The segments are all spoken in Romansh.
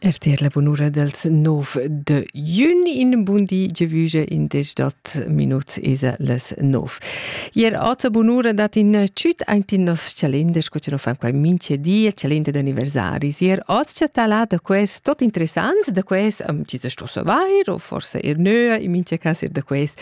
RTL la bunura dels 9 de jun in bundi gevuge in dec dat minuts esa les 9. Ier ata bunura dat in ciut aint in nos calender, sco ce no fan quai mince di, il calender d'anniversaris. Ier ot ce tala da quest tot interessants da quest, um, ci sto savair, o forse er nöa, in mince cas er da quest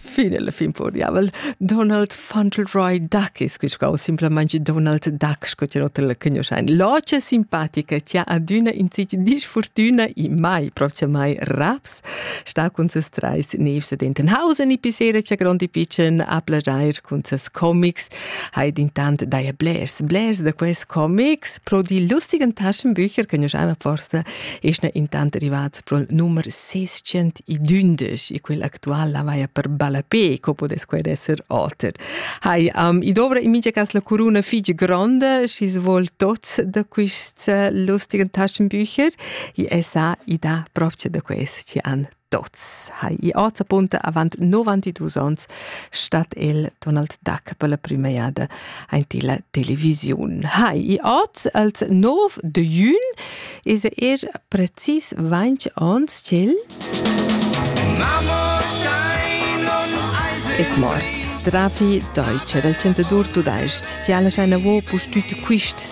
Fin alla fin po diavel. Donald Fauntleroy Duck es quiscau, simplamaing Donald Duck, sco chi oter la cugnuoschain. Loce simpatica chi ha adüna in sich disfortüna e mai proximai raps, sta cun ses trais nevs ed Entenhausen e pisera cha grondi pitschen a plagiair cun ses comics, haid intant daia blers, blers da quels comics, pro die lustigen Taschenbücher, cugnuoschaiva forsa Es ne intant rivats pro numer 612 e quel actual la vaia per ballapé, co podes quaid esser oter. Hai, um, i dovra in mincha cas la curuna fig gronda, schis vol tots da quists lustigen taschenbücher, i esa i da propce da quest an Tots ha i azapunta avant 92 ons stat el Donald Duck per la prima jada aint illa televisiun. Ha i az als 9 de jun is er precis 20 ons ch'el Es mort. Drafi Deutsche del 102 tudais-ch, stiala schai navo pustüt quist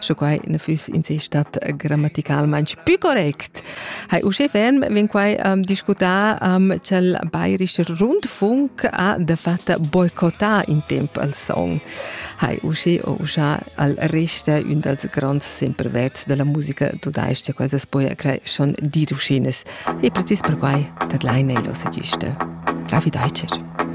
sche quai na füss in se stat grammaticalmaing pü correct. Hai uschè ferm vegn quai um, discutà um, ch'el bairisch rundfunk ha de fatta boicottà in temp al song. Hai uschi o uscha al resta un dals grands semperverts della musica tudaisch, quasi poi crei schon di ruschines. E precis per quai tadlai nei l'ossegista. Travi Deutscher.